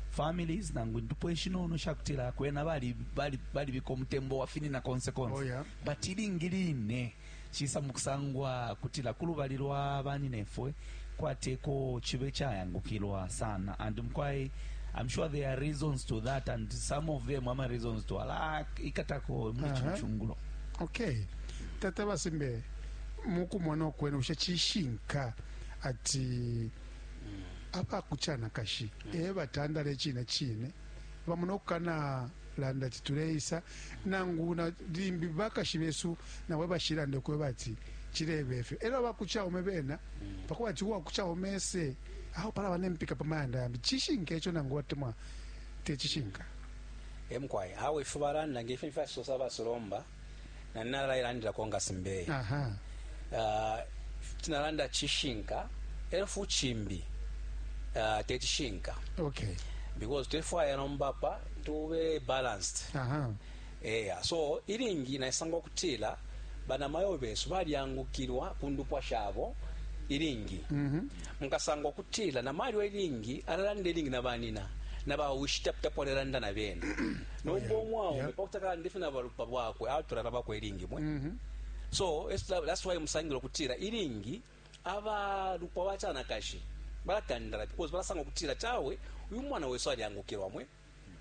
families nangu indupwa ishinono shakutila kwena balibika umutembo wafinina konse konse oh, yeah. but ilingi line cisa mukusangwa kutila kulubali lwa baninefwe kwateko chibe chayangukilwa sana and mkwai I'm sure there are reasons to that and some of them ama reasons to ala ikatako mwichungulo uh -huh. okay tata basimbe mukumona kwenu usha chishinka ati aba ku canakashi e batandala icine cine bamona ukukana landa ati tuleisa nangu na limbi bakashi besu nawe bashilande kwe bati cilebe efyo elo abakuchaume bena pakuba ati uwakuchaume ese aho pala bane mpika pamayanda yambi chishinka echo nangu watemwa techishinka emkwai awe ifubalanda ngefe mfyasosa abasolomba na nina lailandila ko nga simbeye aha uh, tinalanda chishinka elo fu chimbi uh, techishinka okay because tulefwaya nomba pa tube balanced aha eya so ilingi naisanga okutila banamayo besu balyangukilwa ku ndupwa shabo ilingi mm-hmm. mukasanga okutila namalyo ilingi alalanda ilingi na banina na bawishitaputapo alalanda na bena nomba omwaume pakuti akalande fye na balupwa bwakwe atula na bakwe ilingi mwe mm-hmm. so that's why musangila okutira ilingi abalupwa bachanakashi balatandala because balasanga okutira chawe uyu mwana wesu alyangukirwa mwe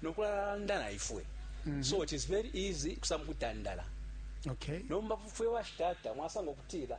nokulanda na ifwe mm-hmm. so it is very easy kusanga kutandala okay nomba fwe bashitata mwasanga okutira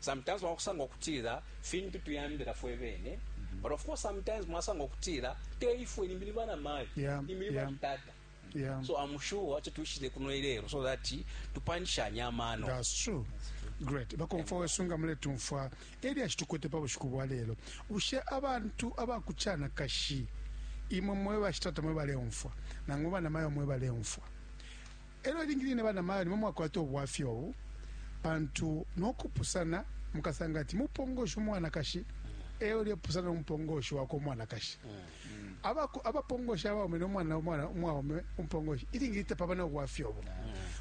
Sometimes wakusanga ukutila fintu tuyambila fwe bene but of course sometimes mwasanga ukutila te ifwe limbi ni bana mayo yeah, limbi ni yeah. batata Yeah. So I'm sure acha tuishile kuno ilero so that tupanishanya amano. That's true. Great. Bakomfa wesunga mule tumfwa eri ashitukwete pa bushiku bwa lero. Bushe abantu abakuchana kashi imwe mwe bashitata mwe baleumfwa nangu bana mayo mwe baleumfwa. E lyo ilingi line bana mayo ni mwe mwakwata ubwafya ubu, pantu no kupusana mukasanga ati mupongoshi umwanakashi e ulepusana no mupongoshi wakwe umwanakashi. Abaku- Abapongoshi abaume no mwana umwana- umwaume umupongoshi ilingi line tapaba na ubwafya ubu.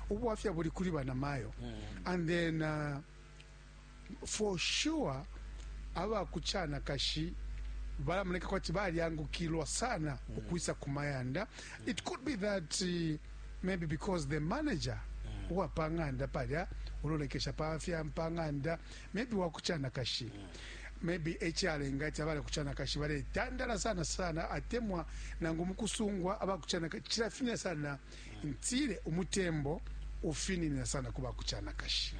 Ubwafya buli kuli bana mayo. And then uh, For sure aba ku canakashi balamoneka kwati balyangukilwa sana mm. ukwisa ku mayanda mm. it could be that uh, maybe because the manager mm. uwa pa ng'anda palya ulolekesha pa fya pa ng'anda maybe wa ku canakashi mm. maybe echalenga ati abale kuchana kashi bale tandala sana sana atemwa nangu mukusungwa abakuchana kachira finya sana mm. ntile umutembo ufininina sana ku bakucanakashi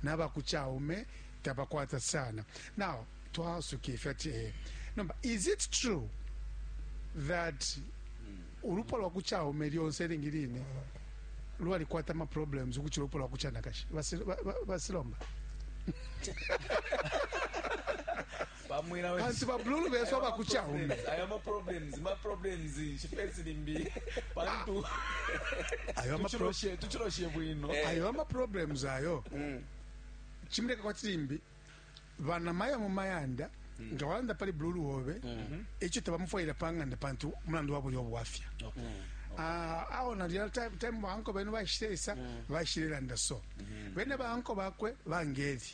nabakucaume tabakwata sana now twasuka ifi ati eh, nomba is it true that ulupwa lwa kucaume lyonse ilingi line lwalikwata amaproblems ukucila ulupwa lwa kucanakashi Basi- ba- ba- basilomba kansi babululu besu abakuchaume ayo ama problems ma problems shifesi limbi pantu ayo ama tuchiloshe tuchiloshe bwino eh. ayo ama problems ayo mm. chimleka kwa tsimbi bana maya mu mayanda mm. nga wanda pali bululu wobe mm -hmm. echo tabamufoyira panganda pantu mulandu wabo yobo wafya okay. mm. Ah, awo na real time time banko bene bashiresa mm. bashireranda so mm-hmm. bene banko bakwe bangeri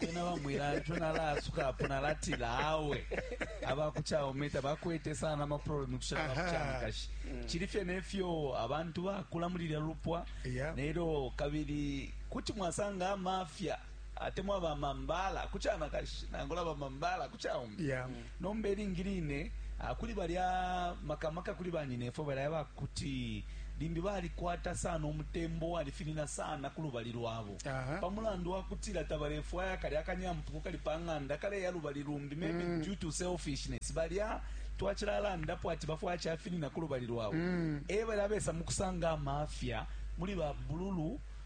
ena bamwila nco nalaasuka apo nalatila awe abakucaume tabakwete sana amaproblemu kushala bakucanakashi mm. cili fye nefyo abantu bakula muli lya lupwa yeah. nelyo kabili kuti mwasanga amafya atemwa bamambala kucanakashi nangula bamambala kucaume yeah. mm. Nomba ilingi line kuli balya, maka maka kuli banyinefwe balya aba kuti limbi balikwata sana umutembo uwalifinina sana ku lubali lwabo pa mulandu wa kutila tabalefwaya kalya akanyampuku kali pa ng'anda kaleya lubali lumbi, maybe mm. due to selfishness. Balya twacilalandapo ati bafwaya cafinina ku lubali lwabo mm. e balya besa mu kusanga amafya muli ba bululu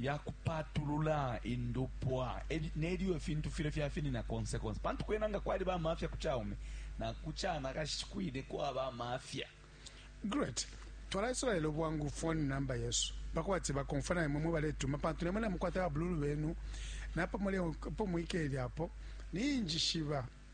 ya kupatulula indupwa nelyo ifintu filya fyafinina konse konse, pantu kwena nga kwaliba amafya ku caume na ku canakashi kwine kwaba amafya. Great. Twala Israel bwangu phone number yesu bakwati bakomfa na imwe baletuma pantu nemwe namukwata babululu benu napo muli po mwikeli apo ninjishiba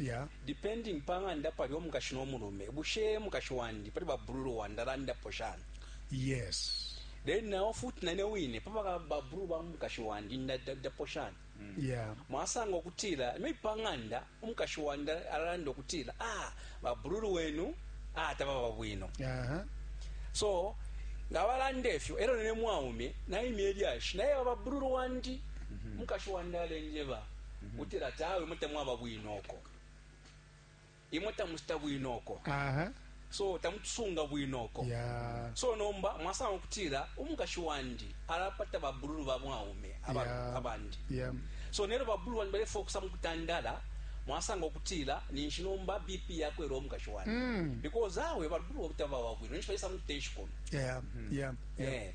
yeah. depending pa ng'anda pali omukashi no mulume bushe mukashi wandi pali babululu wandi alandapo shani yes then nawo futi nane wine papa babululu ba mukashi wandi ndadapo shani yeah mwasanga okutila maybe pa ng'anda umukashi wandi alanda okutila ah babululu wenu ah tababa bwino uh-huh. so nga balanda efyo era nene mwaume naimya elyashi naye babululu wandi umukashi wandi alenjeba utila ati awe imwe tamwaba bwino uko imwe tamushita bwino uko aha so tamutusunga bwino uko ya so nomba mwasanga ukutila umukashi wandi alapata babululu ba mwaume aba- Yeah. abandi ya so nero babululu bandi balefa okusa mu kutandala mwasanga okutila ninshi nomba bp yakwera omukashi wandi Mm. because awe babululu obutabawa bwino ninshi balesa mukutensha kono ya ya ya Eh,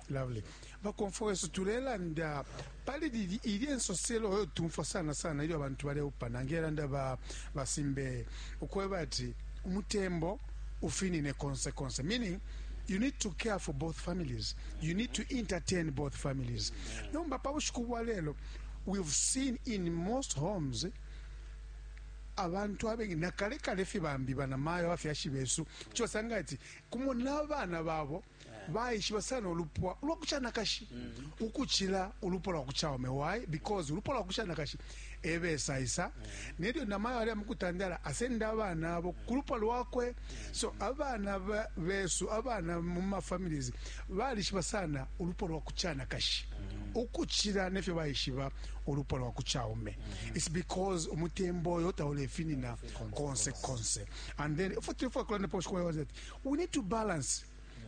Lovely. Bakomfwa wesu tulelanda pali lili ili ensoselo oyo tumfwa sana sana ilyo abantu baleupana ngelanda ba basimbe ukweba ati umutembo ufinine konse konse meaning you need to care for both families you need to entertain both families nomba pa bushiku bwa lelo we've seen in most homes abantu abengi nakale kale fye bambi banamayo abafyashi besu kyosanga ati kumo n'abana babo baishiba sana ulupwa ulwa kucanakashi ukucila ulupwa lwa kucaume why because ulupwa lwa kucanakashi ebesaisa nelyo namayo ali amukutandala asenda abana abo ku lupwa lwakwe so abana ba- besu abana mu mafamilies balishiba sana ulupwa lwa kucanakashi ukucila nefyo baishiba ulupwa lwa kucaume its because umutembo oyo taulefinina konse konse and then futi fwakulandapo shikwayoza ati we need to balance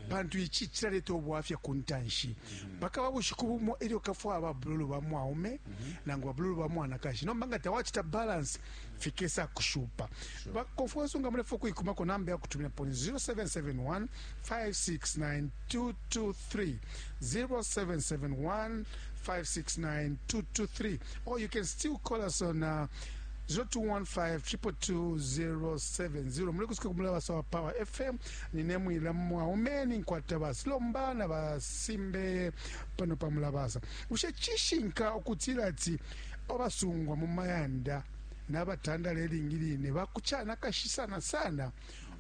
pantu ici cilaleta ubwafya ku ntanshi mpaka ba bushiku bumo elyo kafwa aba bululu ba mwaume nangu ba bululu ba mwanakashi nomba nga tawacita balance fikesa kushupa bakonfuensi nga mulefa ukuikumako namba yakutumina poni 0771 569223 0771 569223 or you can still call us on uh, 0215-222-070 mulekusuka kumulabasa wa power fm nine mwila mwaume ninkwata basilomba na basimbe pano pa mulabasa bushe cishinka ukutila ati abasungwa mu mayanda nabatandala ilingi line bakucana kashi sana sana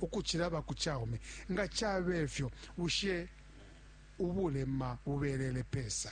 ukucila bakucaume nga cabe fyo bushe ubulema bubelele pesa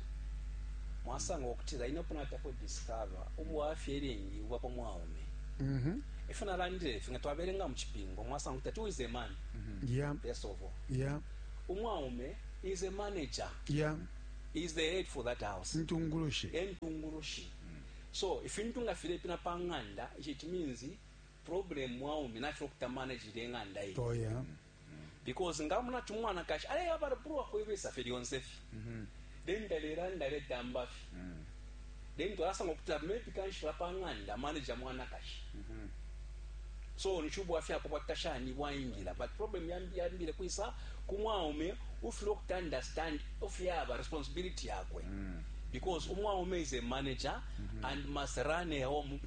mwasanga ukutila ine upo natapo discover ubwafya ilingi buba pa mwaume mm -hmm. ifyo nalandile ifi nga twabelenga mu cipingo mwasanga kuti ati is a man mm -hmm. yeah. first of all yeah. umwaume is a manager yeah. is the head for that house ntungulushi entungulushi mm. so ifintu nga filepina pa ng'anda ici it means problem mwaume nafyo okuta manage ile ng'anda iyi oh, yeah. because ngamona ati umwanakashi aleya balubulwa kuibisa fye lyonse fye mm-hmm. then talelanda aletamba fye mm. then twalasanga ukutila maybe kanshi lapang'anda manager mwanakashi mm-hmm. so nichubwa fya kwa tashani waingila but problem yambi yambile kwisa kumwaume ufile ukuti understand ofyaba responsibility yakwe mm. because umwaume is a manager mm -hmm. and must run a home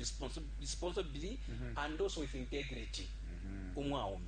responsibly mm -hmm. and also with integrity mm -hmm. umwaume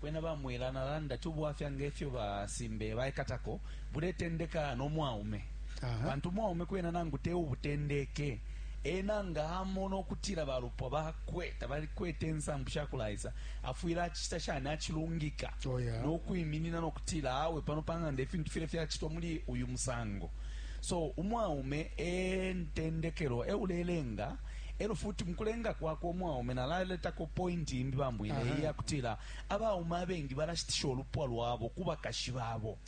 Kwena ba Mwila, nalanda ati ubwafya ngefyo ba Simbeye baikatako buletendeka no mwaume. Aha. Pantu umwaume kwena nangu te ubutendeke, ena nga amona ukutila ba lupwa bakwe tabalikwete insambu shakulaisa, afwile acicita shani? Acilungika Oh, yeah. no kwiminina no kutila awe pano pa ng'anda ifintu file fyacitwa muli uyu musango. So umwaume e ntendekelo, e ulelenga E lyo futi mu kulenga kwakwe umwaume nalaletako pointi imbi, baMbwile, iyi ya kutila abaume abengi balashitisha ulupwa lwabo ku bakashi babo.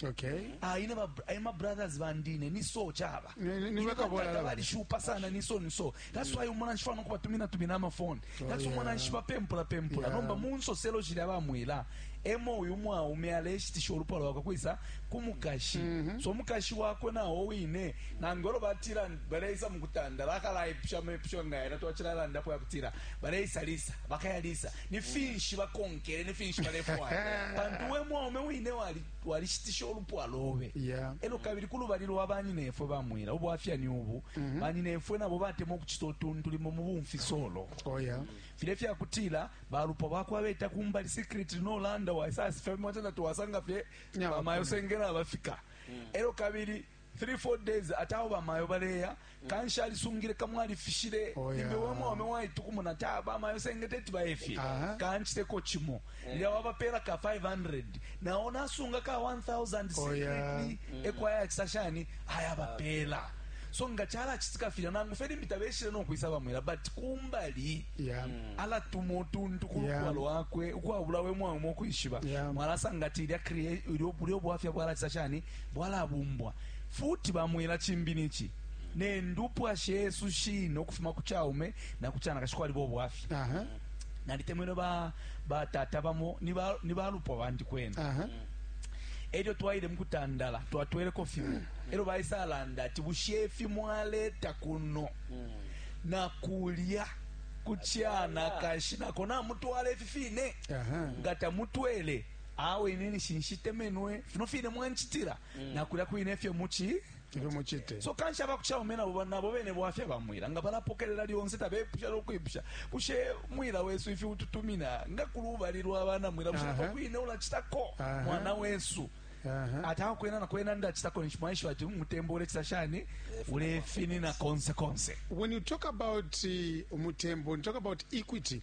Ah, ine eh, ma brothers bandi ine ni so caba. Ine bakatata balishupa sana ni so ni so. That's why umona nshifa no kubatumina tumina amafoni. Oh, That's umona nshifa pempula pempula. Nomba mu nsoselo shilya baMwila emo uyu mwaume aleshitisha ulupwa lwakwe kwisa ku mukashi. Mm-hmm. So mukashi wakwe nawo wine nangolo batila baleisa mu kutanda bakalaipusha amepusho nga yena twacilalandapo ya kutila baleisa lisa bakaya lisa ni mm. finshi bakonkele ni finshi balefwaya pantu we mwaume wine walishitisha wali olupwa lobe yeah. elo kabili ku lubali lwa banyinefwe bamwila ubwafya ni ubu mm -hmm. banyinefwe nabo batema ukucita utuntu limo mu bumfisolo oh, yeah. file fya kutila balupwa bakwa beta kumbali secret nolanda waisasifya mimwatenda tuwasanga fye yeah, bamayo sengela abafika mm. elo kabili 3 4 days ati awo bamayo baleya kanshi alisungile kamwe alifishile Oh, yeah. imbe we mwaume waitukumuna ati ah, bamayo sengete eti bayefye Aha. kanchiteko chimo lya wabapela ka 500 nawo nasunga ka 1000 Oh, yeah. secretly ekwayakisa shani ayabapela so nga chalachitika filya nangu fe limbi tabeshile nokwisa bamwela but kumbali Yeah. alatuma utuntu ku Yeah. lupwa lwakwe ukwabula we mwaume okwishiba Yeah. mwalasanga ati ilya crea- ilyo- bulyo bwafya bwalachisa shani bwalabumbwa futi. Bamwela cimbi nici, ne ndupwa shesu shine ukufuma ku caume na ku canakashi kwaliba ubwafya. Nalitemenwe ba batata bamo ni balupwa bandi kwena. Elyo twaile mukutandala twatweleko fimo elyo baisa landa ati bushe ifi mwaleta kuno na kulya ku canakashi nako namutwala ifi fine? Nga tamutwele? awe ine nishi nshitemenwe fino fine mwancitila mm. nakulya kwine efyo muchi ifyo muchite so kanshi abakuchaume nabo nabo bene bwafya bamwila nga balapokelela lyonse tabepusha lokwipusha kushe mwila wesu ifi ututumina nga kulubali lwa bana mwila kushe nabo kwine ulachitako mwana wesu ataka kwena nakwena ndachitako nishi mwaisho ati umutembo ulechita shani ulefini na konse konse when you talk about uh, umutembo you talk about equity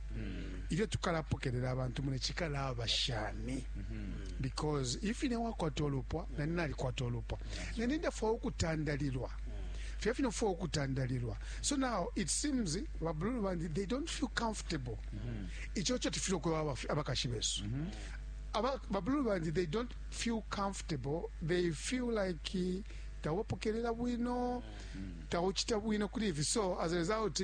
ilyo tukalapokelela abantu mune cikalaba shani because if ine wakwata olupwa nani nalikwata olupwa nani ndafwaya ukutandalilwa fya fino fo ukutandalilwa so now it seems babululu bandi they don't feel comfortable ico co tufile ukweba abafi- abakashi besu Aba- babululu bandi they don't feel comfortable they feel like eh, tawupokelela bwino tawuchita bwino kuli ivi so as a result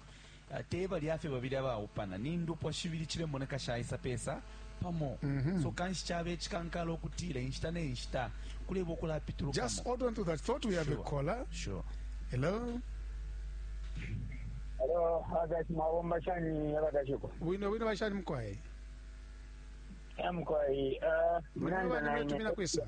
te balya fye babili abaupana ni ndupwa shibili cilemoneka shaisa pesa pamo mm -hmm. so kanshi cabe cikankala ukutila inshita ne nshita kuleba ukulapitulukamo just hold on to that thought we have sure. a caller sure hello hello abakashi mwabomba shani abakashiko bwino bwino bashani mukwayi mukwayi uh, mnanda naine kwisa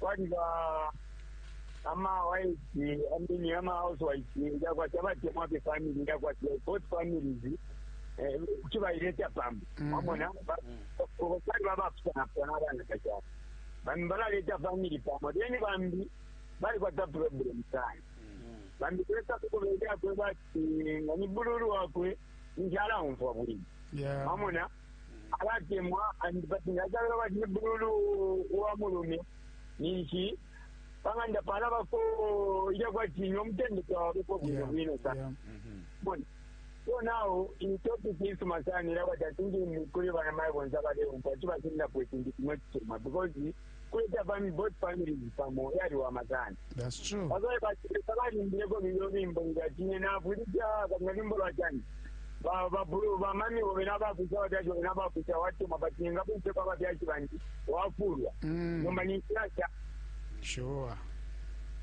kwaliba amawaisi amini ama housewives yakwati abatemwa fye family yakwati both families eh, kuti baileta pamo Mhm. wamona Ba- ko- kwaliba abapusanapusana abanakashi abo bambi balaleta family pamo then bambi balikwata problem sana bambi kuleta kukubeera kweba ati nga ni bululu wakwe nkyala wumva bwino Yeah. wamona abatemwa and but ngacabela bati ni bululu wa mulume ninshi pang'anda pana bako ilya kwati no mutende twawabeko bwino Yeah, bwino sa yeah. bona so now in topic isuma sana ila kwati atingi kuli bana mayi bonse abaleumpa chibasindapo ikintu kimwe kisuma because kuleta fami both families pamo yaliwama sana That's true. bazaye batesa balimbileko lulyo lwimbo ngakine navulija kabina lwimbo lwa chani Ba- babulu bamami bobe nabakusa abafyashi bobe nabakusa watuma but ningakuiseko abafyashi bandi wafulwa Mm. nomba ninsirasha Sure.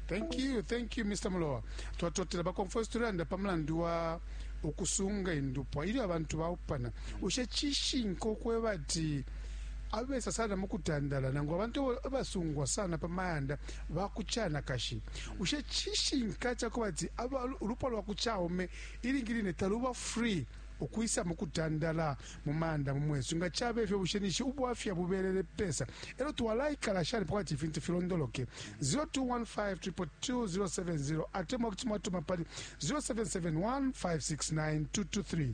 Thank you, thank you Mr. Mulowa. Twatotela bakonfesi tulanda pa mulandu wa ukusunga indupwa ilyo abantu baupana. Ushe chishinka ukweba ati abesa sana mu kutandala nangu abantu abo abasungwa sana pa mayanda ba ku canakashi bushe cishinka ca kuba ati aba- ulupwa lwa ku caume ilingi line taluba free ukwisa mu kutandala mu mayanda mu mwesu nga caba ifyo bushe nishi ubwafya bubelele pesa elo twalaikala shani pakati ifintu filondoloke 02152270 atemwa kuti mwatuma pali 0771569223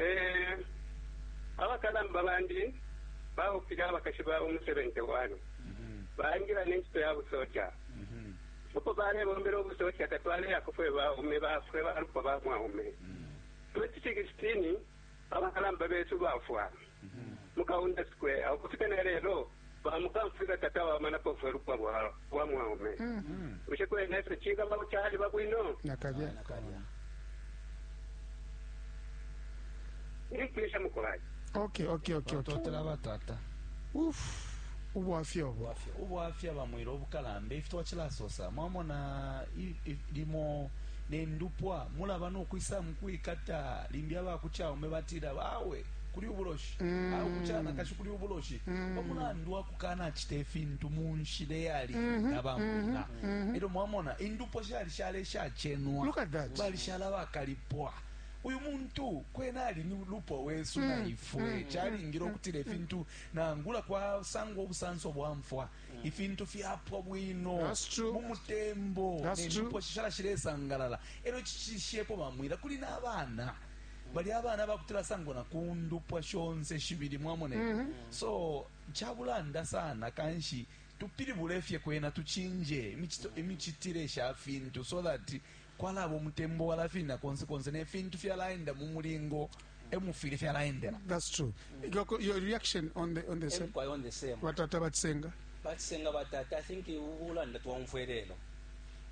Ee, abakalamba bandi baupile abakashi babo mu 71, baingila ne ncito ya busoja. Uko balebombela ubusoja tatwaleyako fwe baume ba fwe balupwa ba mwaume. 2016 abakalamba besu bafwa. mu Kaunda Square. Ukufika na lelo, bamukamfwilwa tatwabamanapo fwe lupwa lwa mwaume. Bushe kwena ifyo cikaba kuti aliba bwino? Nakalya. Ndipwisha mukolai. Okay, okay, okay, okay. Totela batata. Uf. Ubwafya obo. Ubwafya bamwira obukalamba ifi twachilasosa. Mwamona limo nendupwa mulaba nokwisa mukwikata limbi abakuchaume batira bawe kuli ubuloshi mm. au ku canakashi kuli ubuloshi mm. pamulandu wa kukanacita ifintu mu nshila eyali mm -hmm. nabamwina mm -hmm. elyo mwamona indupwa shali shale shacenwa balishala bakalipwa uyu muntu kwena ali ni lupwa wesu mm. na ifwe mm. chalingiro mm. kutile fintu nangula kwa sango obusanso bwa mfwa mm. ifintu fyapwa bwino mu mutembo ne lupwa shishara shiresangalala ero chishishepo bamwira kuli nabana bali abana bakutila sango na kundupwa shonse shibili mwamone mm -hmm. so chabulanda sana kanshi tupilibule fye kwena tuchinje imichitire sha fintu so that kwalaba umutembo walafina konse konse ne fintu fyalaenda mu mulingo emufili fyalaendela that's true Your, co- your reaction on the on the same. ebikwaya on the same Batata bachisenga. batisenga batata i think ubulanda twaumfwe lelo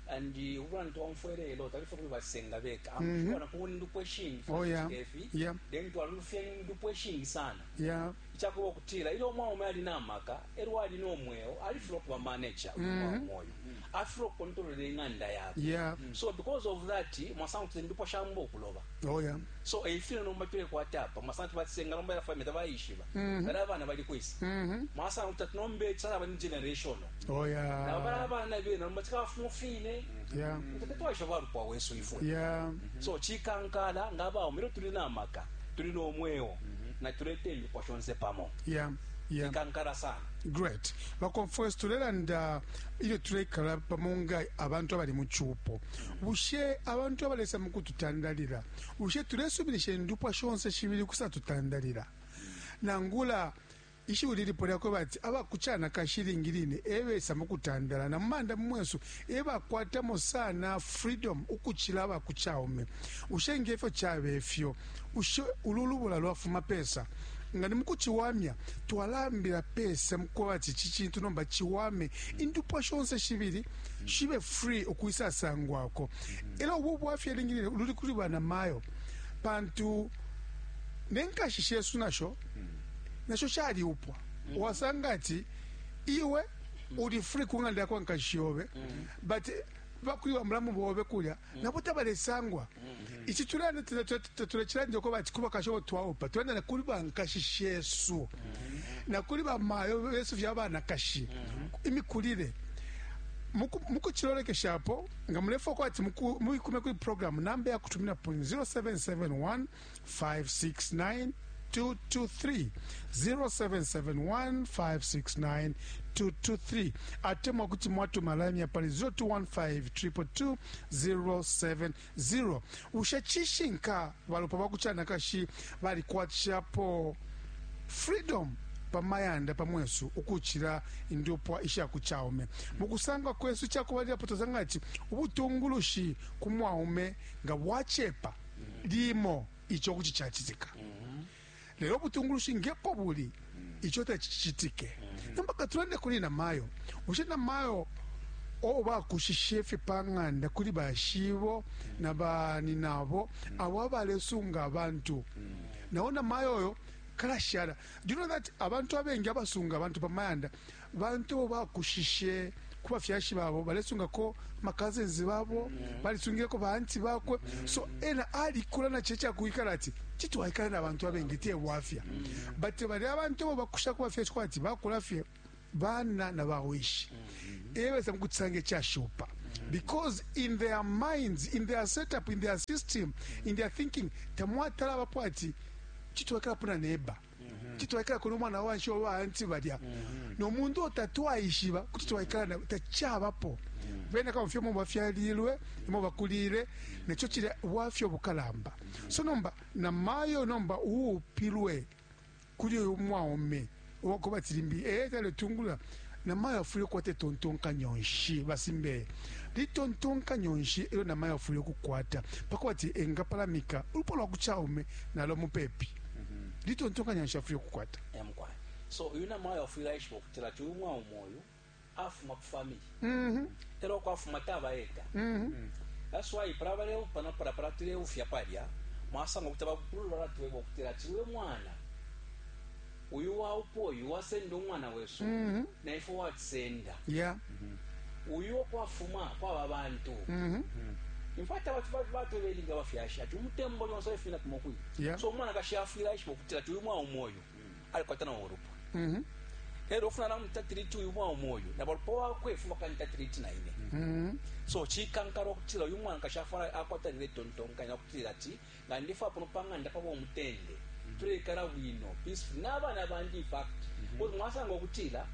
and uh, ubulanda twaumfwe lelo tabife kuli batisenga beka amfana kuba indupwa eshingi Oh, yeah. efi Yeah. then twalulufya indupwa eshingi sana Yeah. ichakuba okutila ilyo omwaume ali namaka elyo ali nomweo alifula okuba manager omwaume oyo afilwa ukukontolola ing'anda yakwe yeah. mm. so because of that mwasanga kuti ndipo shamba okuloba oh, yeah. so eifile nomba tulekwata apa mwasanga kuti batisenga nomba yafamita bayishiba mm -hmm. bala abana bali kwisa mm -hmm. mwasanga kuti ati nomba ekisala bali generation oh, yeah. nabo bala abana bena nomba tikabafuma fine yeah. kuti tetwaisha balupwa wesu ifwe yeah. mm -hmm. so chikankala nga baume ero tuli namaka tuli nomweo mm -hmm. na tulete emikwa shonse pamo yeah. yeah. chikankala sana great bakonfwesi tulelanda ilyo tuleikala pamo nga abantu abali mu cupo bushe abantu abalesa mu kututandalila bushe tulesubilisha indupwa shonse shibili kusatutandalila nangula ishiwi lilipo lyakwe bati abakucana kashilingi line ebesa mu kutandala na mumanda mumwesu ebakwatamo sana freedom ukucila abakucaume bushe ngefyo cabe fyo Bushe ulu lubula lwafuma pesa? Nga ni mu kuciwamya, twalaambila pesa mu kwebati ici cintu nomba ciwame, indupwa shonse shibili shibe free ukwisasangwako. E lyo ubu bwafya ilingi line luli kuli banamayo pantu ne nkashi shesu nasho nasho shaliupwa. Wasanga ati iwe uli free ku ng'anda ya kwa nkashi yobe but ba kuli bamulamu bobe kulya nabo tabalesangwa ici tulanda tatulacilanda uko bati kuba kasho twaupa tulanda na kuli bankashi shesu na kuli bamayo besu fya banakashi imikulile mukucilolekeshapo nga mulefoka ati muikume kuli programu namba yakutuminapo 0771 0712230771569223 atemwa kuti mwatuma lamya pali 0215222070 bushe cishinka balupwa bakucanakashi balikwatishapo freedom pamayanda pamwesu ukucila indupwa ishakucaume mukusangwa kwesu cakubalilapo tozanga ati ubutungulushi kumwaume nga bwacepa limo ico kuti cacitika lelo ubutungulushi ngepo buli ico tacicitike nomba katulande kuli namayo bushe namayo o bakushishe fye pa ng'anda kuli bashibo na bani nabo abo abalesunga abantu nawo namayo oyo kalashala do you know that abantu abengi abasunga abantu pa mayanda Ba Nte uo bakushishe ku bafyashi babo balesungako ma cousins babo, balisungileko ba anti bakwe. So ena alikula na cilya ca kwikala ati kuti twaikala na bantu abengi, te bwafya. But balya abantu abo bakusha ku bafyashi kwati bakula fye bana na bawishi e besa mu kucisanga icashupa because in their minds, in their setup, in their system, in their thinking tamwatala abapo ati kuti twaikalapo na neba. kuti twaikala kona umwana wanshi wa baanti balya nomuntu otatwaishiba kuti twaikala na tacabapo bena kama fyomo bafyalilwe imo bakulile neco cilya bwafya obukalamba so nomba na mayo nomba uupilwe kuli uyu mwaume owakuba tilimbi ee eh, taletungula Namayo afwile ukukwata itontonkanyo nshi? Ba Simbeye, litontonkanyo nshi elyo namayo afwile ukukwata pakwebati engapalamika ulupwa lwa ku caume nalo mupepi? Mm-hmm. Litontonkanyo nshi afwile ukukwata? Yeah, mukwai. So, uyu namayo afwile aishiba ukutila ati uyu mwaume uyu afuma ku family. Mm-hmm. Elyo uko afuma taba eka. Mm-hmm. That's why para baleupa no para para tuleufya palya mwasanga ukuti abakulu balatweba ukutila ati uyu mwana uyu waupa uyu wasenda umwana wesu mm -hmm. na ifwe watusenda yeah. mm -hmm. uyu okwafuma kwaba bantu mm -hmm. infati abantu batolelinga bafyashi ati umutembo lyonse olefina kuma kwi yeah. so umwana kashi afwila ishiba okutila ti uyu mwaume oyu mm -hmm. alikwata na olupa mm -hmm ero ofuna namutatiriti uyu mwaume oyu na balupa wakwe fuma kanitatiriti naine mm -hmm. so chikankara okutila uyu mwana kashi afwala akwatanira etontonkanya okutira ati nga ndi fwa pano panganda pabo mutende mm-hmm. tulekala bwino peaceful nabana bandi in fact mm-hmm. kuti mwasanga okutila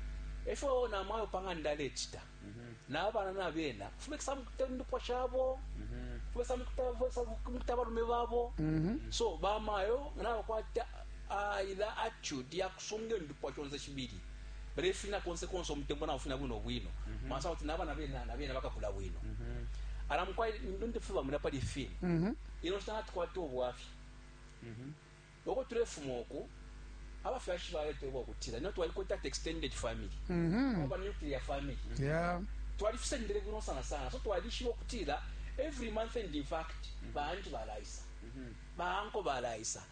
efyo namayo panganda alechita mm-hmm. nabana nabena fumekisa mukutela indupwa shabo fumekisa mukutela abalume babo so bamayo nabakwata ah, ila attitude yakusunga indupwa shonse shibili balefina konse konse umutembo na ufina bwino bwino mm -hmm. masa kuti nabana bena na bena bakakula bwino mm -hmm. ala mukwai ndo ndefuba muna pali fini mm -hmm. ino stana tukwata obwafi mm -hmm. oko tulefuma oku abafyashi balete bwa kutira no twali kwata extended family mm -hmm. oba nuclear family mm -hmm. yeah twali fisendere bwino sana sana so twali shiwo kutira every month and in fact mm -hmm. bantu balaisa mm -hmm. banko balaisa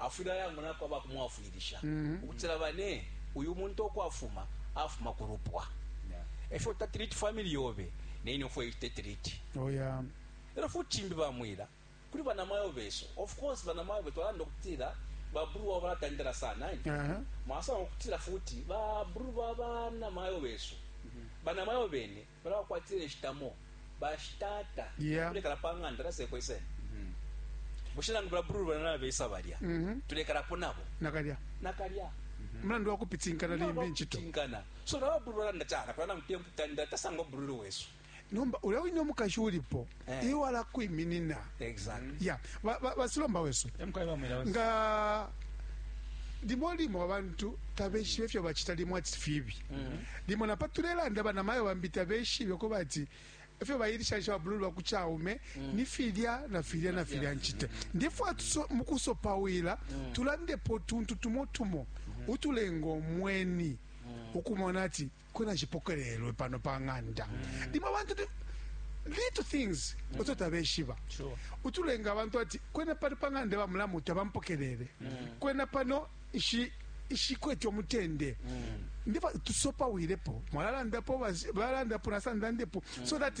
Afwile ayangunako aba kumwafwilisha ukutila, bane, uyu muntu uko afuma, afuma ku lupwa e fyo tatriti family yobe, ne ine fwey tetriti. Oh, yeah. E lyo futi cimbi bamwila kuli banamayo besu. Of course, banamayo betu balanda ukutila ba bru wabo balatandala sana, eh? Uh -huh. Mwasanga ukutila futi ba bru ba banamayo besu, banamayo bene, Balabakwatila inshitamo bashitata yeah. Tulekala pa ng'anda nasekwe sene mm -hmm. Bushe nangu balabrulu bana nabesa balya mm -hmm. Tulekalapo nabo nakalya nakalya mm -hmm. Mlandu wakupitinkana limbi nchito Tinkana So nababrulu bana ndachana Kwa na mtempu tanda Tasangwa brulu wesu Nomba ulawinyo mukashuripo Eh. iwe alakwiminina Exactly. ya ba- ba- basilomba wesu Emkwai bamwira wesu. nga limo limo abantu tabeshibe efyo bacita limo ati fibi limo napa tulelanda banamayo bambi tabeshibe ko bati efyo bayilishanisha babululu bakucaume ni filya na filya na filya ncite ndifwa tuso- mu kusopawila tulandepo tuntu tumo tumo utulenga omweni ukumona ati kwena cipokelelwe pano pa ng'anda limo abantu tu- little things oto tabeshiba Sure. utulenga abantu ati kwena pano pa ng'anda bamulamu tabampokelele kwena pano ishi ishikwete omutende ndiba tusopawilepo mwalalandapo basi- balandapo nasandandepo so that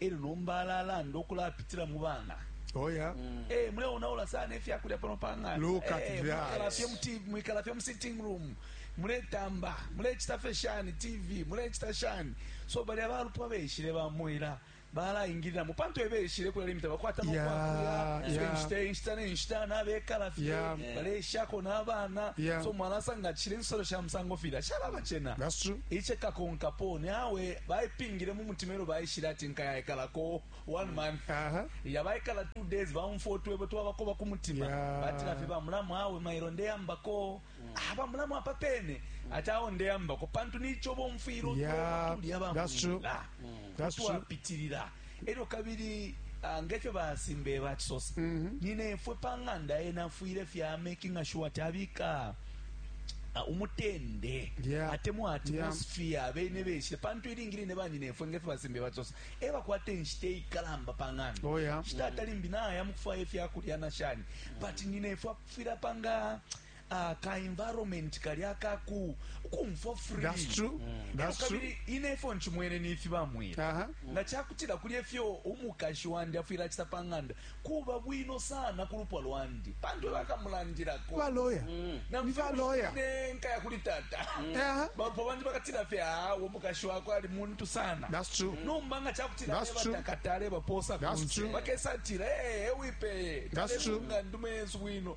elyo nomba alalanda ukulapitila mu bana Oh, yeah. Mm. Hey, eh, muleonaula sana efyakulya pano pang'anda Look at hey, eh, that. mwikala fye mu sitting room muletamba mulecita fye shani tv mulecita shani so balya balupwa beshile bamwela balaingiliramo pantu ebeshile kulya limita bakwata nokwakuyainshita inshita nenshita nabekala fye baleshako n'abaana so mwalasa nga kishile ensolo sha musango filya shalabacena ice kakonkapo ni awe baipingile mu mutima Elo baishile ati nkaya ikalako one mm. month Aha. ya baikala two days baumfwa utwebo twabako bakumutima yeah. batila fye bamulamu awe mailo ndeyambako mm. ah, bamulamu apa pene mm. ati awo ndeyambako pantu nicho bomfwira yeah. tulya bamwila mm. twapitirira elyo kabili ah, ngefyo basimbe bachisosa mm -hmm. ninefwe pa ng'anda enafwire fya making sure tabika uh, umutende yeah. atemwa atmosphere yeah. abene beshe pantu ilingi line banyinefwe ngefe basembe batsosa e bakwata enshita eikalamba pa ng'anda oh, yeah. shita atalimbi naya mukufwaya efyakulya na shani but nyinefwe akufwira panga uh, ka environment kali akaku kumfo free that's true mm. that's true kabili ine ifo nchimwene ni ifi bamwira uh -huh. nga chakutira kuli efyo umukashi wandi afwira chita panganda kuba bwino sana ku lupwa lwandi pantu bakamulandilako. Ba lawyer. Mm. Na Ni ba lawyer. mfine nkaya kuli tata. Aha. Bapwa bandi bakatila fye awo mukashi wakwe ali muntu sana. That's true. Nomba nga chakutila That's beba true. takatale baposa That's kunse. true. Bakesa atila eh eh, wipeye. That's Kale true. kunga ndume yesu bwino.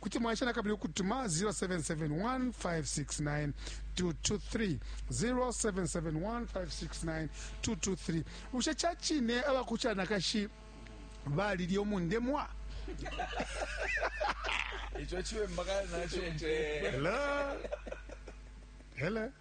Kuti mwaesha na kabili ukutuma 0771569223, 0771569223. Bushe ca cine aba ku canakashi balilya umundemwa? Ico ciwemba kale naco mpe. Hello? Hello?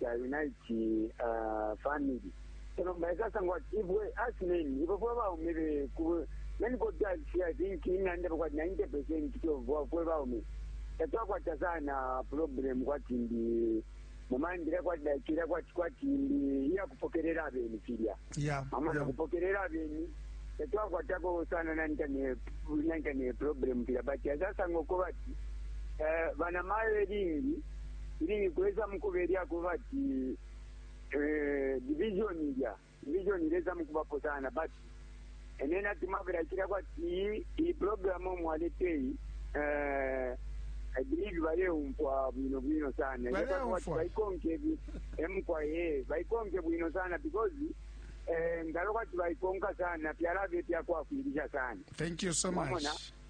ca unite a family so nomba ikasangwa ati ibwe as men ibwe fwe baume be ku men ko ta si i think inanda kwa 90% to bwa fwe baume tatwakwata sana problem kwati ndi mumandira kwati dakira kwati kwati ndi iya kupokerera abeni filya Yeah, mama yeah. nakupokelela abeni tatwakwatako sana nanta ne nanta ne problem pila but asasanga uko bati eh, bana mayo elingi ilingi kuweza mukubelya kuba ati eh, division ilya division ileza mukubapo sana but and then ati mavela chira kwati iyi iyi program omwaleteyi eh, I believe baleumfwa bwino bwino sana Baleumfwa. Yaba kwati baikonke bi- emukwa ye baikonke bwino sana because eh, ngalo kwati baikonka sana fyalabe fyakwafwilisha sana thank you so much Mwamona?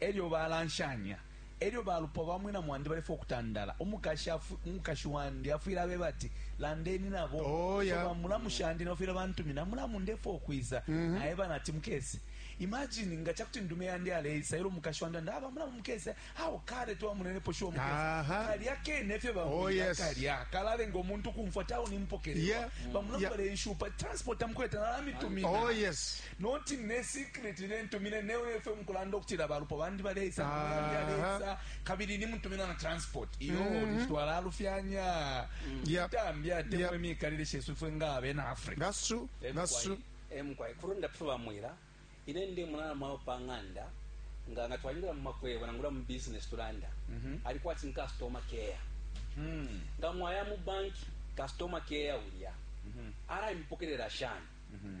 e lyo balanshanya. E lyo balupwa ba mwina mwandi balefwaya ukutandala, umukashi wandi afwile abeba ati, Landeni na bo. Oh, yeah. So bamulamu shandi nabo fwile bantumina, Mulamu, ndefwaya ukwisa. Mm-hmm. Naeba nati, Mukese. Imagine nga ca kuti ndume yandi aleisa, e lyo umukashi wandi anda, Aba, ah, Mulamu, mukese. Awo kale twamunenepo shuwa mukese. Kalya kene fye bamwila oh, yes. kalya. Kalalenga umuntu kumfwa tawo nimpokelelwa. Yeah. Bamulamu yeah. balenshupa, transport amukweta nalamitumina. Oh, yes. Noti ne secret ne ntumine ne we FM kulanda ukutila balupwa bandi baleisa mwandi aleisa kabili ni mutumina na transport iyo mm -hmm. nitwala alufyanya mm. yep. tambi ate yep. mwemi kalile shesu fwe nga abena Africa that's true that's true em kwa kurunda pfuba mwira ine ndi mwana mwa panganda nga nga twalira mu makwebo na ngura mu business tulanda mm -hmm. alikuwa tin customer care mm -hmm. nga mwaya mu bank customer care ulia mm -hmm. ara impokelera shani mm -hmm.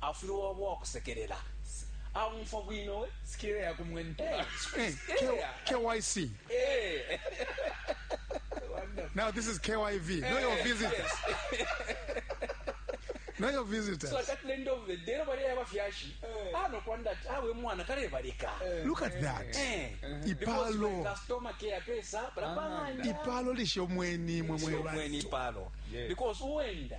afwile waba uwakusekelela aumfwa bwino we sikile ya kumwentula KYC now this is KYV no your visitors no your visitors so at the end of the day nobody ever fyashi ah no kwanda ah we mwana kale balika look at that eh. ipalo customer care pesa para panga ipalo lisho mweni mwe mwe ipalo because uenda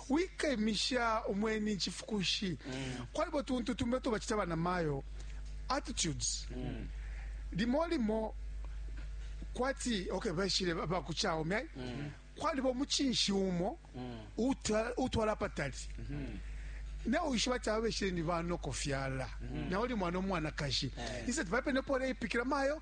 wikemisha umweni icifukushi kwalibo tuntu tumbi uto bacita banamayo attitudes limo limo kwati okay bashile bakuchaume ai kwaliba umuchinshi umo utwa- utwala patali nawe wishiba ati aba beshile ni banokofyala nawe uli mwana omwanakashi isati pape nepole ipikira mayo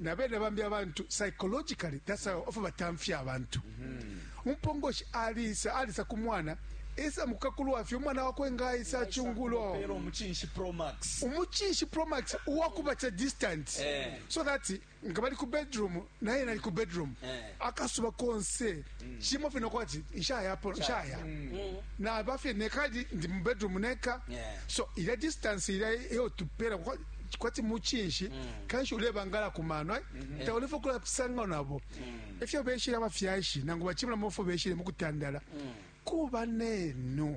na bene bambi abantu psychologically that's how ofa batamfya abantu umpongoshi alisa alisa ku mwana esa mukakulwa fye umwana wakwe ngaisa chungulo Pero umuchinshi Pro Max. umuchinshi promax uwakubatsa distance Eh. so that nga bali ku bedroom naye nali ku bedroom Eh. akasuba konse cimo fye nokwati nshayapo nshaya naba fye neka ali- ndi mu bedroom neka Yeah. so ilya distance ilya iyo tupela kwa- kwati mucinshi kanshi ulebangala ku mano ai taulefa kulapisanga nabo efyo beshile abafyashi nangu bacimula mofo beshile mukutandala kuba nenu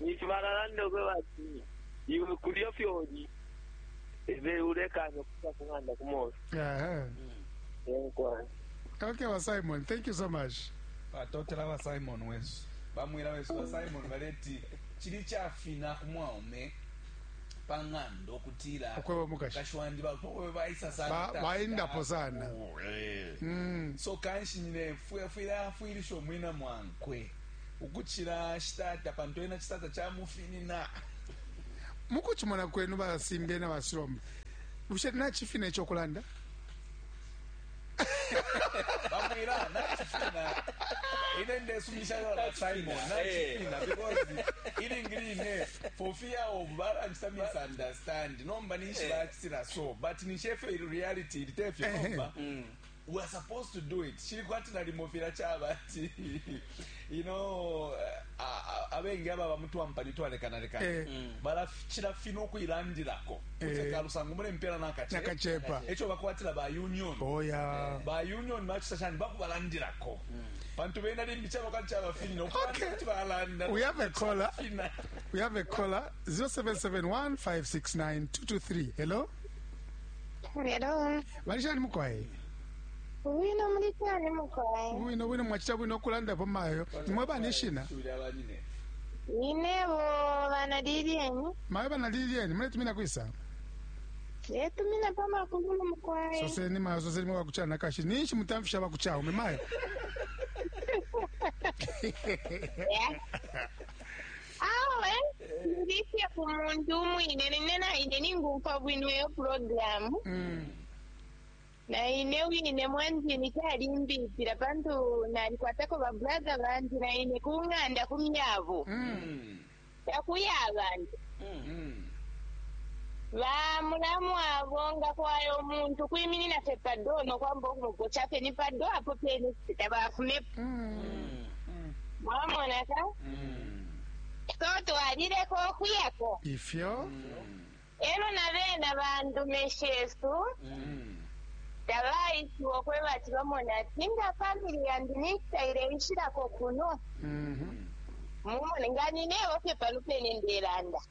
ninshi balalanda ukweba ati iwe kulyo fyoli ebe ulekanya ukusa ku ng'anda ku mofi Aha. enkwana Okay, ba Simon, thank you so much. batotela ba simon wesu bamwira wesu ba simon baleti chili chafina kumwaume pang'ando kutila Ukweba mukashi. mukashi wandi bakwe baisa Ba- sana baendapo sana. Oh, eh. Mm. so kanshi nyine fwe fwile afwilisha omwina mwankwe ukucila shitata pantu ena citata camufinina. Mukucimona kwenu ba Simbye na ba Silomba, bushe nacifina ico kulanda? Bamwila, nacifina. Ine ndesumisha yo la Simon, nacifina, eh. because ilingi line, for fear of balanchita misunderstand, nomba ninshi eh. bacitila so, but ninshi efyo reality, ilitefyo eh. nomba. Mm. we are supposed to do it chili kwati nalimo fila chaba ati you know abengi ababa mutwampani twalekanalekana eh. mm. balachila fino kuilandilako eh. kalusango mule mpela nakachepa echo bakwatila ba union oh, yeah. eh. ba union machisa chani bakubalandilako mm. pantu bena limbi chaba kati chaba fino okay. balanda we have a caller we have a caller 0771 569 223 hello Hello. Bali shani mukwai? Ubwino muli shani mukwai? Ubwino bwino mwachita bwino okulanda po mayo. Imwe bani shina? Inebo bana Lilieni. Mayo bana Lilieni, mwe tumina kwisa? Eh tumina pa makulu mukwai. Sose ni mayo sose ni wakuchana kashi. Ninshi mutamfisha bakuchao ume mayo. Yeah. Awe ndi fye ku muntu umwine nine naine ningumfwa bwino iyo programu Mm. naine wine mwanjini calimbipila pantu nalikwatako babrother bandi naine ku ng'anda ku myabo Mm. takuya abantu Mm. bamulamu abo nga kwaya omuntu kwiminina fye pado nokwamba okumugoca fye ni pado apo pene tabafumepo Mm. mwamona ka so twalileko okuyako ifyo elo na bena bandume shesu tabaisiwa okweba ati bamona ati nga famili yandi nikitaile nshilako kuno mumone nga ninebo fye pano pene ndelanda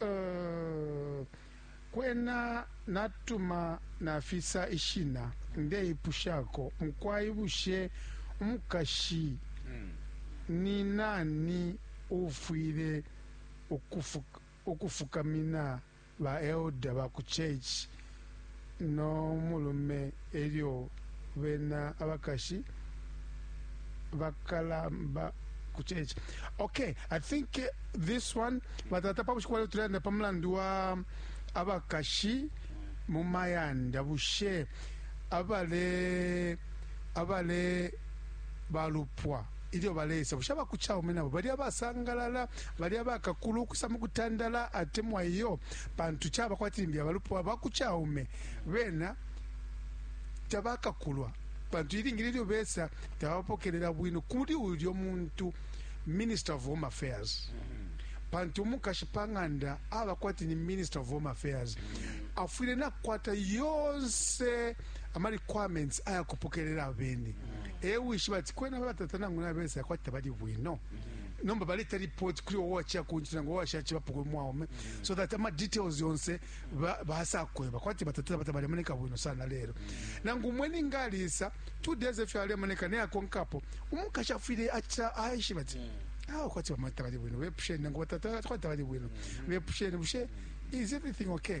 Uh, kwena natuma nafisa ishina. Ndeipushako, mukwai, bushe umukashi mm. ni nani uufwile ukufukamina baelda ba ku church no mulume e lyo bena abakashi bakalamba ku church okay i think uh, this one batata pa bushiku bwaleo tulelanda pa mulandu wa abakashi mu mayanda bushe abale abale balupwa Ilyo baleisa, bushe aba ku caume nabo bali abasangalala, bali abakakulu ukwisa mu kutandala atemwa iyo? Pantu caba kwati limbi abalupwa ba ku caume bena tabakakulwa, pantu ilingi line ilyo besa tababapokelela bwino kuli ulyo muntu, Minister of Home Affairs. Pantu umukashi pa ng'anda aba kwati ni Minister of Home Affairs, afwile nakwata yonse. ama requirements aya kupokelela abeni e wishiba ati kwena batata nangu nabesa yakwati tabali bwino nomba baleta report kuli wowe wachiya kunchito nangu wawashachibapo kuli mwaume so that ama details yonse ba- basakweba kwati batata bata balemoneka bwino sana lero nangu umweni ngalisa two days efyo alemoneka neyakonkapo umukashi afwile acha aishiba ati awo kwati bamata bali bwino bepusheni nangu batata kwati bali bwino bepusheni bushe is everything okay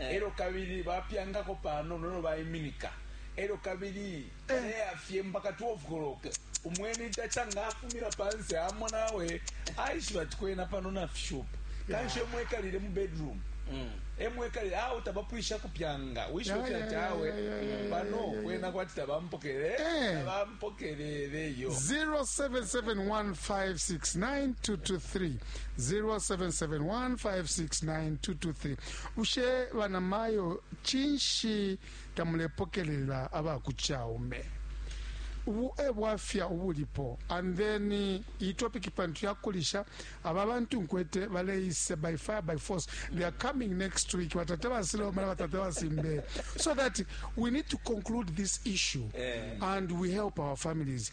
elyo kabili bapyangako panono elyo baiminika elyo kabili baleyafye mpaka 12 koloke umweni taca nga afumila panse amona awe aishiba ati kwena pano nafishupa kanshi emwekalile mu bedroom Mm. emwekalile awo tabapwisha kupyanga wishibe Yeah, yeah, fyatawe yeah, yeah, yeah, pano yeah, yeah, kwena kwati tabampokele Eh. tabampokeleleyo 0771569223 0771569223 bushe banamayo cinshi tamulepokelela aba ku caume ubu e bwafya ubulipo and then iyi topic pantu yakulisha aba bantu nkwete baleise by fire by force they are coming next week batate basilomana batate basimbe so that we need to conclude this issue Eh. and we help our families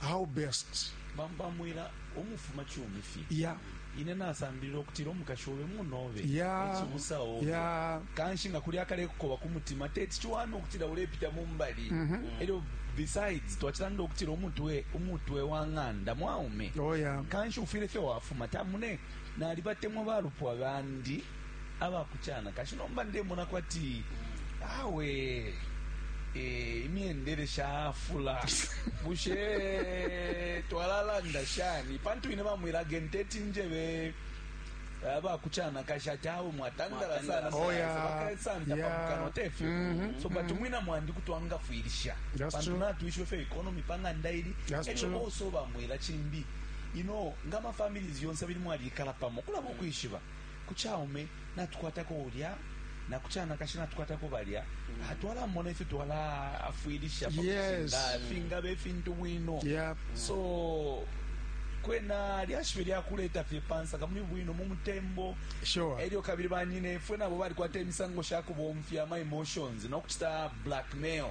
how best bambamwila umufuma chumi fi yeah ine nasambilila okutira omukashi obe munobe ekibusa obe kanshi nga kuli akalekukoba ku mutima teti kiwana okutira ulepita mu mbali mhm. eryo besides twakiranda okutira omutwe omutwe wa ng'anda mwaume oh, kanshi ufire fye wafuma tamune nali batemwa balupwa bandi aba ku canakashi nomba ndemona kwati awe eh, imyendele shafula bushe twalalanda shani pantu ine bamwila genteti njebe aba ku canakashi ati awe mwatandala sana Mwatandala Oh, yeah. bakasanta Yeah. pamukano tefyo Mhm. so but umwina mwandi kutwangafwilisha That's pantu true. natwishiwe fyo economy pang'anda ili That's elyo true. also bamwila chimbi ino nga mafamilies yonse bili mwalikala pamo kulaba ukwishiba ku caume natukwatako ulya na ku canakashi natukwatako balya mm. ah, twalamona ifyo twalaafwilisha yes. fingaba ifintu bwino yep. so kwena lyashibe lyakuleta fye pansaka muli bwino mu mutembo sure. elyo kabili banyine fwe nabo balikwata emisango sha kubomfya ma emotions nokucita blackmail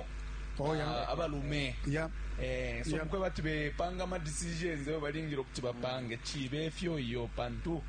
oh, yeah. uh, abalume yeah. eh, so yeah. mukwe bati bepanga ma decisions eyo balingire okuti bapange mm. chibe efyo iyo pantu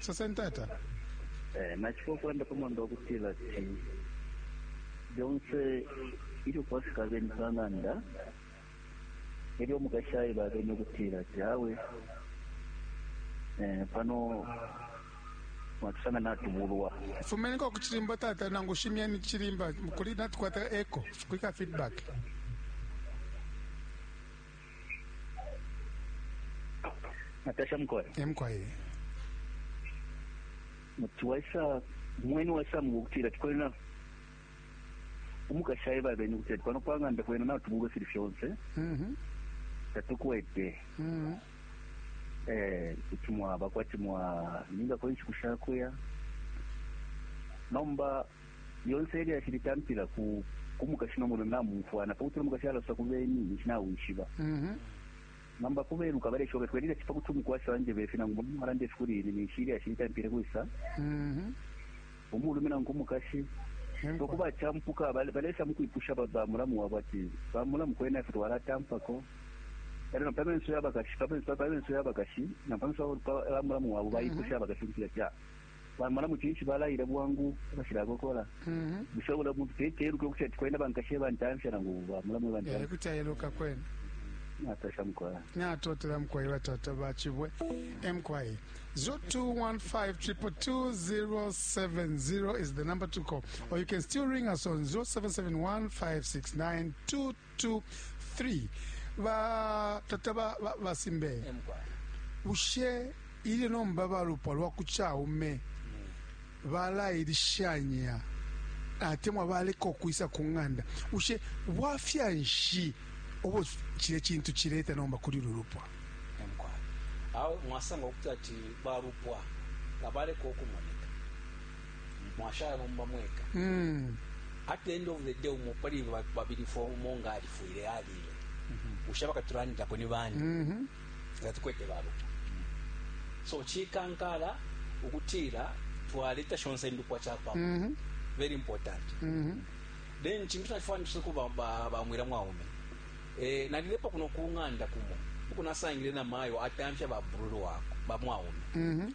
soseni tata Eh, nachifo ukulanda pamwanda wakutila ti byonse ilyo kwafika abeni pang'anda elyo omukashi ayiba abeni okutila ti awe eh, pano mwatusanga natubulwa fumeniko ku cilimba tata nangu shimyeni cilimba kuli natukwata eco kulika feedback natasha mkoe emkoe muti waisa mweni waisa mukutila tikwena umukashi aye babeni kuti ati pano pang'anda kwena natubulwe fili fyonse mhm. tatukwete mhm. eh, kuti mwaba kwati mwa ninga kwenshi kushakuya nomba Lyonse ilyashi litampila ku ku mukashi no mulume bamumfwana, pa kuti umukashi alosa ku beni ninshi nawishiba. Mm -hmm. Nomba kubeluka baleshoka twelile chipa kuti umukwasha wanjeba ifi nangu mulume walanda ifi kuli ine ninshi ilyashi litampile kwisa mm-hmm. umulume nangu umukashi so kuba champuka balesa mukwipusha bamulamu wabo ati bamulamu kwena ife twalatampako ero na pamenso yabakashi pamenso yabakashi na pamenso bamulamu wabo bayipusha mm-hmm. abakashi kuti ati ah, bamalamu cinshi balaila bwangu abashilakokola mm-hmm. bushe bula muntu teteluke ukuti ati kwena bankashi ebantamfya nangu bamulamu ebantamfya eh, kuti ayeluka kwena natasha mkwaya natotela mkwaya batata bachibwe emkwaye 0215222070 is the number to call or you can still ring us on 07715692 2 3 ba tata ba, ba, ba simbe bushe ilyo nomba balupwa lwa ku caume balailishanya atemwa baleka ukwisa ku ng'anda bushe bwafya nshi obo cile cintu cileta nomba kuli lulupwa awe mwasanga ukuti ati balupwa nga baleka ukumoneka mwashala nomba mweka mm. at the end of the day umo pali babili fo umo nga alifwile alile mm-hmm. ushaba katulandilako ni bani mm-hmm. nga tukwete babo so chikankala ukutila twaleta shonse indupwa chapamo mm-hmm. very important then chintu chachifanisha kuba bamwira mwaume eh, nalilepa kuno kung'anda kumo ukunasangire na mayo atamfya babruru wako bamwaume mm-hmm.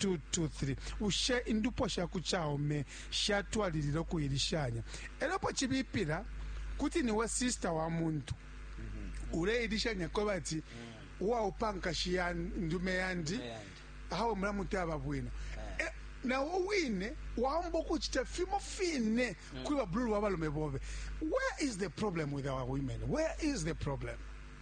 223 bushe indupwa sha ku caume shatwalilila ukuilishanya e lyo apo cibipila kuti ni we sista wa muntu uleilishanya kweba ati uwaupa nkashi ya ndume yandi Ndume yandi. awe mulamutaba bwino Eh. Eh, nawe wine waomba ukucita fimo fine kuli babululu wa balume bobe where is the problem with our women where is the problem